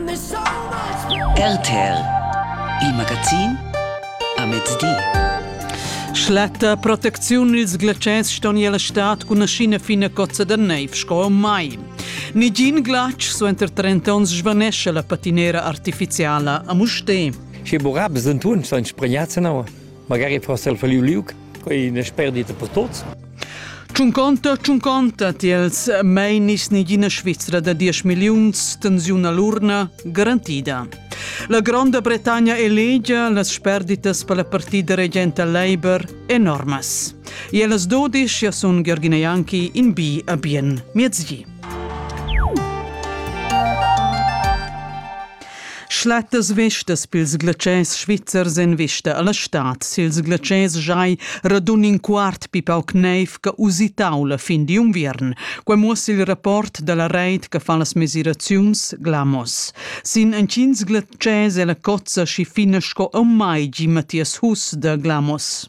RTL Il magazin a mezdi. Schlatta protecziun ils glatschers ston el stat cun aschina fina cozza da neiv sco mai. Nigin glatsch suenter 30 onns svanesce la patinera artificiala a Muste. Che burabs en tun sono spregnati in aua. Magari forse el falliu liug, quei ina sperdita per tuts. Tschunconta, tschunconta tiels meinis negina Svizra da 10 milliuns tensiun all'urna garantida. La Gronda Bretagna elegia las sperditas per la partida regenta Labour enormas. E las dodisch ja sun Georgina Janki in bi a bien miezgi. Schlattas vistas pils glatschers svizzers en vista alla stad. Sils glatschers giai radun in quart pi pauc neiv che usitau la fin di unviern. Quei muossa il rapport dalla reit che fa las mesiraziuns Glamos. Sin entgins glatschers è la cozza schi fina sco aunc mai, gi Matthias Huss da Glamos.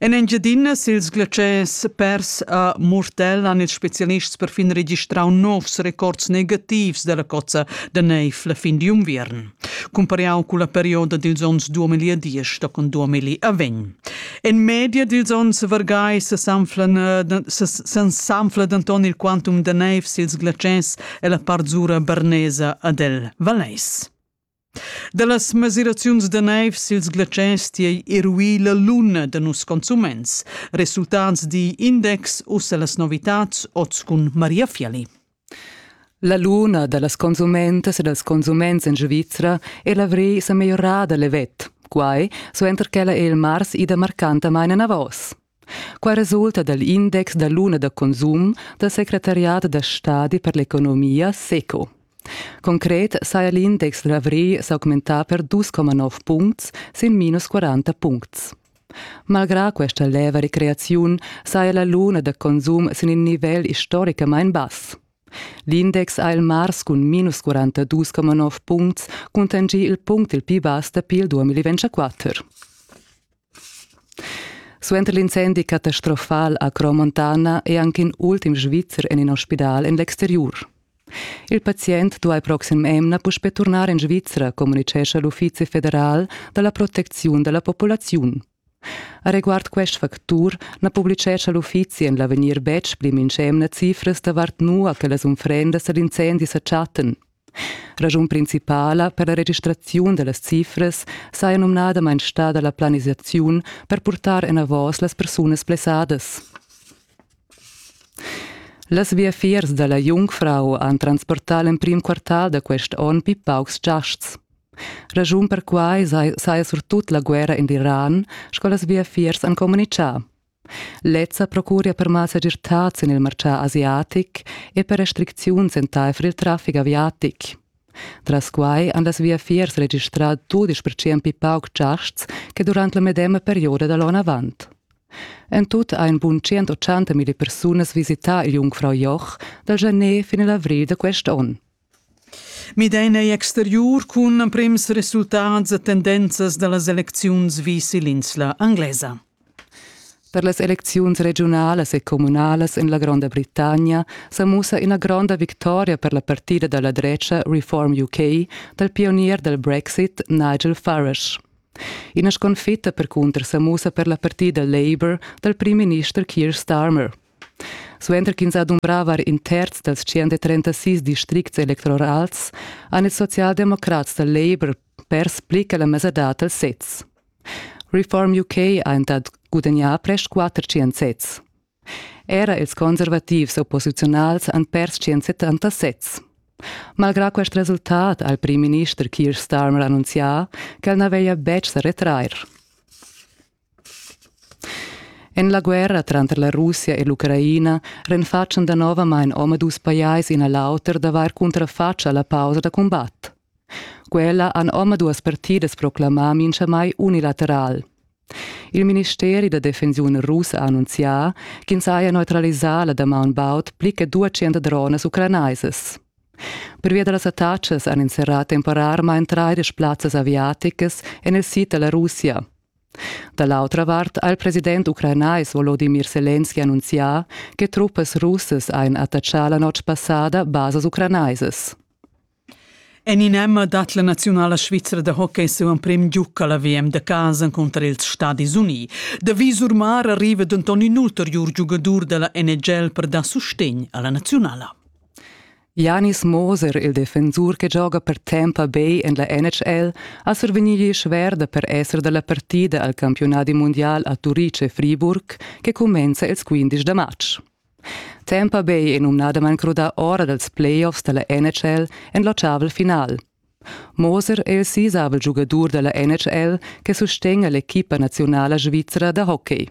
En Engiadina sils glatschers pers a Murtell han ils specialists perfin registrau novs records negativs dalla cozza da neiv la fin d'unviern, cumpariau culla perioda dils onns 2010 tochen 2020. En media dils onns vargai s'anfla denton il quantum da neiv sils glatschers ella part zura bernesa ad el Valeis. Dallas mesiraziuns da neivs ils glatschers tiei eruì la luna da nus consuments. Resultats di index ussa las novitats oz cun Maria Fiali. La luna da las consumentas e dals consuments en Svizra è l'avrì sa meglierada levet. Quai suenter ch'ella è il mars ida marcantamain enavos. Qua resulta dal index da luna da consum dal secretariat da stadi per l'economia SECO. Concret saja l'index d'avrigl s'augmentà per 2,9 puncts sin minus 40 puncts. Malgrà questa leva recreaziun saja la luna da consum sin in nivel istoricamain bass. L'index ha il mars cun minus 42,9 puncts cuntanschì il punct il pli bass dapi il 2024. Suenter l'incendi catastrofal a Cromontana è anche in ultim Svizzer en in ospidal en l'exteriur. Il pazient duai proxim emna puspè turnar en Svizra, communitgescha l'Uffizi federal da la protecziun da la populaziun. A reguard quest factur na publicescha l'uffizi en l'avegnir betg pli mintg'emna cifras davart nua che las unfrendas ed incendis sa chattan. Raschun principala per la registraziun dallas cifras saja numnadamain stada la planisaziun per purtar enavos las persunas blessadas. Las viafiers da la Jungfrau han transportà l'emprim quartal da quest onn pli paucs giasts. Raschun per quai saja surtut la guerra en l'Iran, sco las viafiers han communitgà. Lezza procuria per malsegirtads en il martgà asiatic e per restricziuns entaifer il traffic aviatic. Tras quai han las viafiers registrà dudisch percent pli pauc giasts che durant la medema perioda da l'onn avant. En tut ha in bun 180 mila persunas visità il Jungfrau Joch dal gener fin l'avrigl da quest onn. Midain ei exteriur cun emprems resultats e tendenzas dallas elecziuns vis ill'insla anglesa. Per las elecziuns regiunalas e communalas en la Gronda Britannia sa mussa ina gronda victoria per la partida dalla drecha Reform UK dal pionier dal Brexit Nigel Farage. Ina sconfitta percunter sa mussa per la partida Labour dal primminister Keir Starmer. Suenter ch'ins ha dumbrà var in terz dals 136 districts electorals han ils socialdemocrats da Labour pers pli che la mesadad dals sezs. Reform UK ha entad gudagnà prest 400 sezs. Era ils conservativs opposiziunals han pers 170 sezs. Malgrà quest resultat ha il primminister Keir Starmer annunzià ch'el na veglia betg sa retrair. En la guerra tranter la Russia e l'Ucraina renfatschan danovamain omadus pajais in a l'auter d'avair cuntrafatg a la pausa da cumbat. Quella han omaduas partidas proclamà mintgamai unilateral. Il ministeri da defensiun russ ha annunzià ch'ins haja neutralisà la damaun baud pli che 200 dronas ucranaisas. Pervia da las attacas han inserrà temporarmain traidesch plazzas aviaticas en il sid da la Russia. Da l'autra vart ha il president ucranais Volodimir Selenski annunzià che truppas russas hajan attachà la notg passada basas ucranaisas. En in emma dat la naziunala svizra da hockey siu emprim giuc alla VM da casa cunter ils Stadis Uni. Da visur mar arriva denton in ulteriur giugadur dalla NHL per dar sustegn alla naziunala. Janis Moser, il defensur che gioga per Tampa Bay en la NHL, ha survegnì schwer da per esser da la partida al campiunadi mundial a Turice-Friburg che cumenza ils 15 da matg. Tampa Bay è numnadamain crudà ora dals playoffs da la NHL en l'ottavel final. Moser è il sisavel giugadur da la NHL che sustegna l'equipa naziunala svizra da hockey.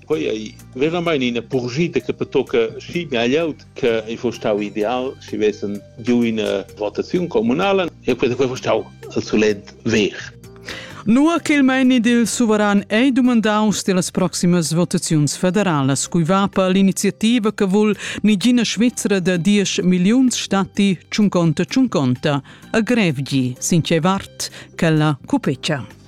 Quei ei veramein ina purschida che pertocca schi ina glieud che ei fuss stau ideal schi vessen giu ina votaziun communala e quei quei fuss stau il solent ver. Nua ch'il meini dil suveran ei dumandaus tilas proximas votaziuns federalas, cui va per l'iniziativa che vul nigina Svizra da diesch milliuns stati tschunconta tschunconta a Grevgi, sin tgei vart ch'ella cupecia.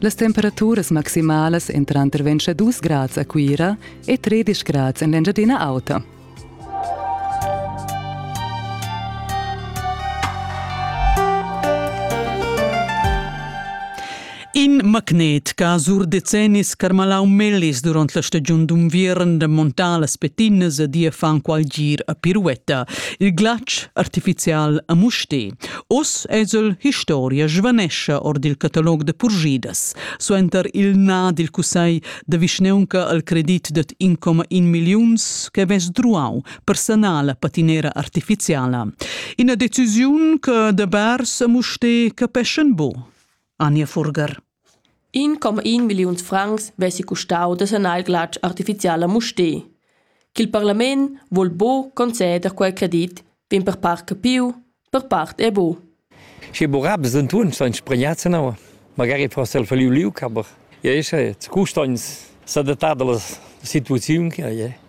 Las temperaturas maximalas èn tranter 22 grads a Cuira e 13 grads en l'Engiadina Auta. In magnet che sur decennis carmalau mellis durant la stagiun d'unviern da montar las petinnas e dir fan qual gir a piruetta. Il glatsch artificial a Muste. Oz esel historia svanescha or dil catalog da purgidas, suenter il na dil cussegl da vischneunca al credit dad 1,1 milliuns che vess druau per sanar la patinera artificiala. Ina decisiun che da bars a Muste capeschan bu. Anja Furger. In coma in milliuns francs vessi custau da sanar il glatsch artificial a Mustér. Ch'il parlament vul bo conceder quei credit vegn per part capiu, per part è bo. Sche burab sind tun schon spregnats in aua. Magari forse il faliu liu caber. Ja, ist jetzt Kustans sadatada la situaziun che è.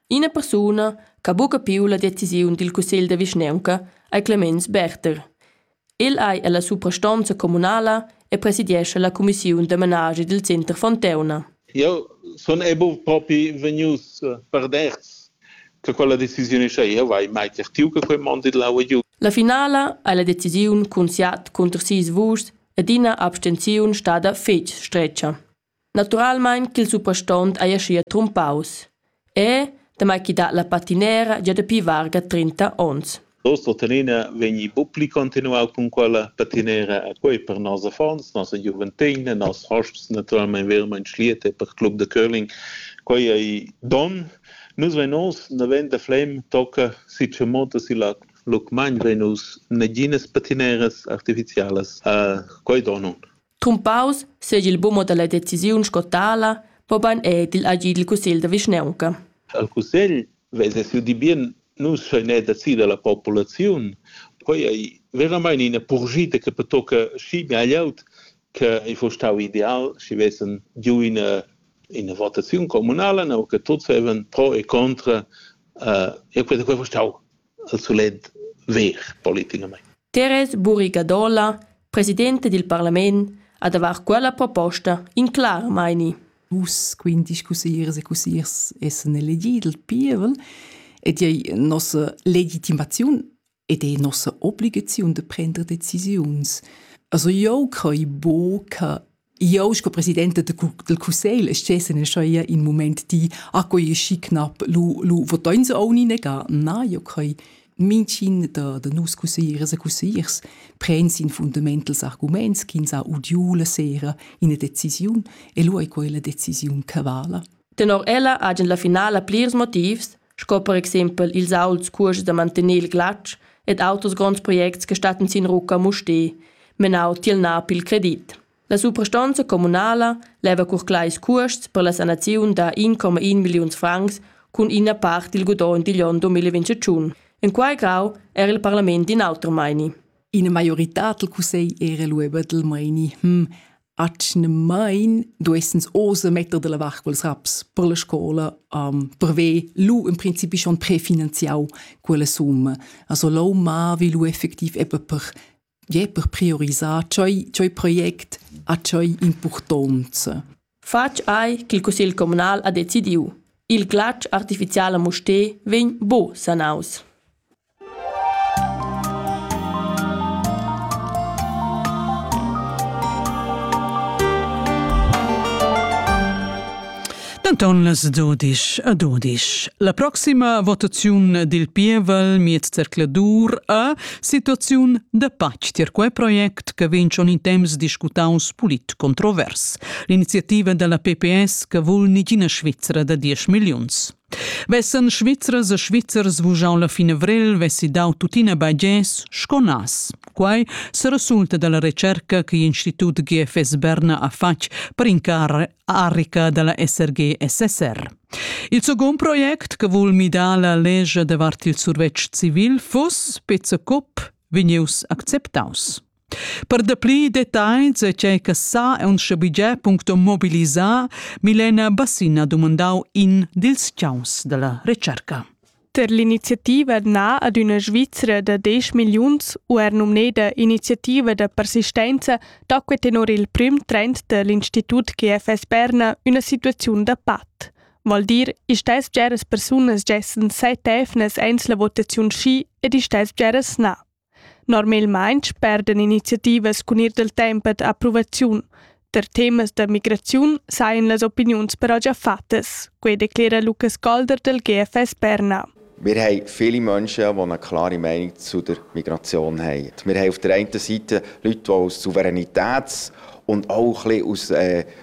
Ina persuna ch'ha buca piu la decisiun dil cussegl da vischnaunca ei Clemens Berther. El ei ella suprastonza communala e presidiescha la cumissiun da menaschi dil Center Fonteuna. Eu sun e buv propi vegnius perderts che quella decisiun scha eu vai mai certiu che quei mond il lau giu. La finala ei la decisiun cun siat cunter sis vuschs ed ina abstenziun stada fetg stretga. Naturalmein ch'il suprastont ei aschia trumpaus. E, damai ch'i dat la patinera gia dapi varga trinta onns. Nos tuttenina vegni buc pli continuau cun quella patinera e quei per nos affons, nossa giuventegna, nos hosps naturalmein veramein schliet e per club de curling. Quei ei donn. Nus vein oz naven da Flem tocca si Tschemotta si Lac. Lucmagn vein nus naginas patineras artificialas. quei donn. Tumpaus seigi il bumo dalla decisiun sco tala, mobein ed igl agid dil cussegl da vischnaunca. Al cussegl vesa siu di bien nus schein er decida la populaziun. Quei ei veramain ina purgita che pertocca schi meglieut che ei fo stau ideal, schi vessen giu ina ina votaziun communala, no che tuts vevan pro e contra. Uh, e quei quei fo stau al solid ver politicamente. Teres Buri Gadola, presidente dil parlament, ha davar quella proposta in clar meini. Vus quinti scusiers e cusiers essen elegi dal pievel ed ei nossa legitimaziun ed ei nossa obligaziun de prender decisiuns. Also eu crei bo che Io sco presidenta del cussegl stessen schoia in moment di a coi schi knap lu lu votain se oni nega na io coi mincin da da nus cussiers e cussiers prends in fundamentals arguments ch'ins ha udiu la sera ina decisiun e lu ei quella decisiun che vala tenor ella hagen la finala plirs motivs sco per exempel ils auts cuors da mantener il glatsch ed auters gronds projects che stattan sin rucca a Mustér, menau tiel NAP il credit. La suprastonza communala leva cur clais cuosts per la sanaziun da 1,1 milliuns francs cun ina part dil gudogn digl onn 2021. En quei grau era il parlament in auter meini. Ina maioritad del cussegl era lueba del meini. Hm, atgnamain duessens osa metter della vart quels raps per la scola um, per ver lu in principi schon prefinanziau quella summa. Also lo ma vi lu effectiv eppe per je per priorisar cioi, cioi project a cioi impurtonza. Fatg ei ch'il cussegl communal ha decidiu. Il glatsch artificial a Mustér vegn buc sanaus. Denton las dodisch a dodisch. La proxima votaziun dil pievel miez zercladur a Situaziun da pac tier quei project che vegn schon in temps discutaus polit controvers. L'iniziativa della PPS che vul nigina Svizzera da 10 milliuns. Vessen Svizzers e Svizzers vugiau la fin avril, vessi dau tuttina bagès sco nas. Quai se resulta dalla recerca che l'Institut GFS Berna ha fatg per incar Arica da la SRG-SSR. Il second project che vul midar la legge davart il survetsch civil fuss Pizzecop vegnius acceptaus. Per dapli detagls e tgei che sa e mobilisar, Milena Bassina dumandau in dils ciaus dalla recerca. Per l'iniziativa Na ad üna Svizra da desch milliuns u er numneda Iniziativa da persistenza tacque tenor il prüm trend da l'Institut GFS Berna üna situaziun da pat. Vol dir, istess bgeras persunas gessen set evnas eins la votaziun schi ed istess bgeras na. Normalmain sperdan iniziativas cun ir dal temp ad approvaziun. Per temas da migraziun sajan las opiniuns però già fattas, quai declera Lukas Golder del GFS Berna. Wir haben viele Menschen, die eine klare Meinung zu der Migration haben. Wir haben auf der einen Seite Leute, die aus Souveränitäts- und auch ein bisschen aus äh,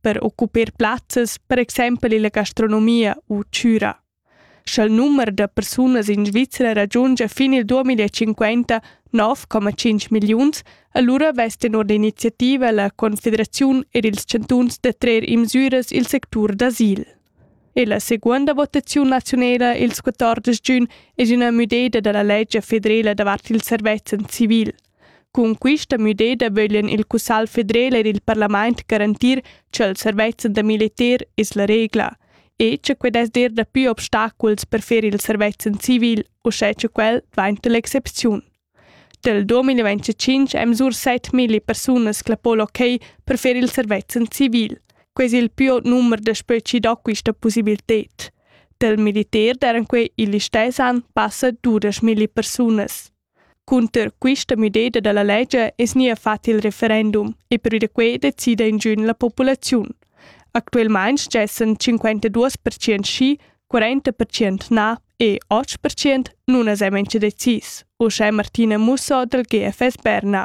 per occupar plazzas, per exempel illa gastronomia u chüra. Sch'el numer da persunas in Svizzera raggiunge fin il 2050 9,5 milliuns, allura vess tenor l'iniziativa la Confederaziun er ils chantuns da trer in misüras il sectur d'asil. E la seguonda votaziun nazionela ils 14 giugn es üna müdeda da la legge federela davart il servezzan civil – Cun quista müdeda vöglian il cussagl federel ed il parlamaint garantir cha'l servezi da militer es la regla e cha quai dess dir dapü obstaculs per fer il servezi in civil uschè cha quel dvainta l'excepziun. Dal 2025 èn misur 7000 persunas clappo l'ok per fer il servezi in civil. Quai es il più aut numer daspö chi do quista pussibilted. Dal militer daran quai il listess an passa 12000 persunas. Cunter quista müdeda da la ledscha es gnia fat il referendum e pür da que decida ingün la populaziun. Actuelmaing stessan 52% schi, 40% na e 8% nun as han incha decis, uschè Martina Musso dal GFS Berna.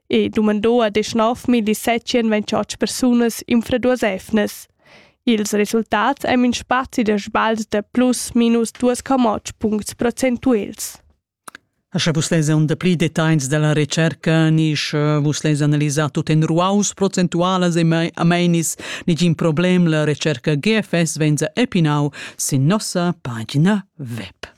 e dumandò ad 9.700 28 persunas infraduas efnas. Ils resultats ein in spazi da sbagl da plus minus duas camots puncts procentuals. Sche vus leis un dapli designs dalla recerca, ni sche vus leis analisar tut en ruaus procentualas e ameinis nigin problem, la recerca GFS venza epinau sin nossa pagina web.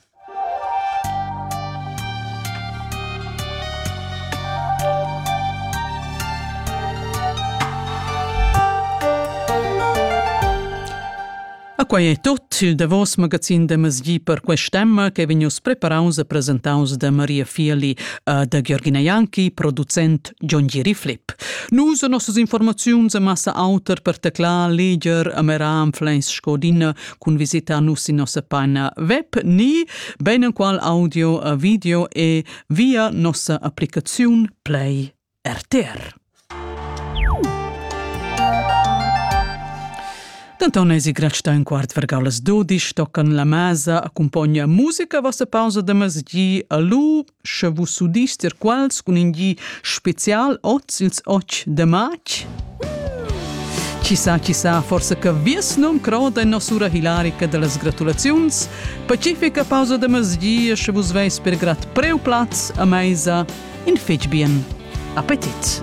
quai è tut il davos magazin da Masgi per quest'emma che vegnius preparaus e presentaus da Maria Fieli e da Georgina Janki, producent John Giri Flip. Nus e nossas informaziuns e massa auter per teclar, leger, ameram Flens Scodina cun visitar nus sin nossa pagina web ni beinenqual audio, video e via nossa applicaziun Play RTR. Denton eisi gratsta in quart vergau las dodisch, tocan la masa, accompogna musica vossa pausa de mezgi, alu, Sche vus udis dir quals cun in gi spezial oz ils 8 de matg? Chi sa, chi sa, forse che vies num croda in nosura hilarica dellas gratulaziuns, pacifica pausa de mezgia, sche vus veis per grat preu plaz a meisa, in fetg bien. Appetit!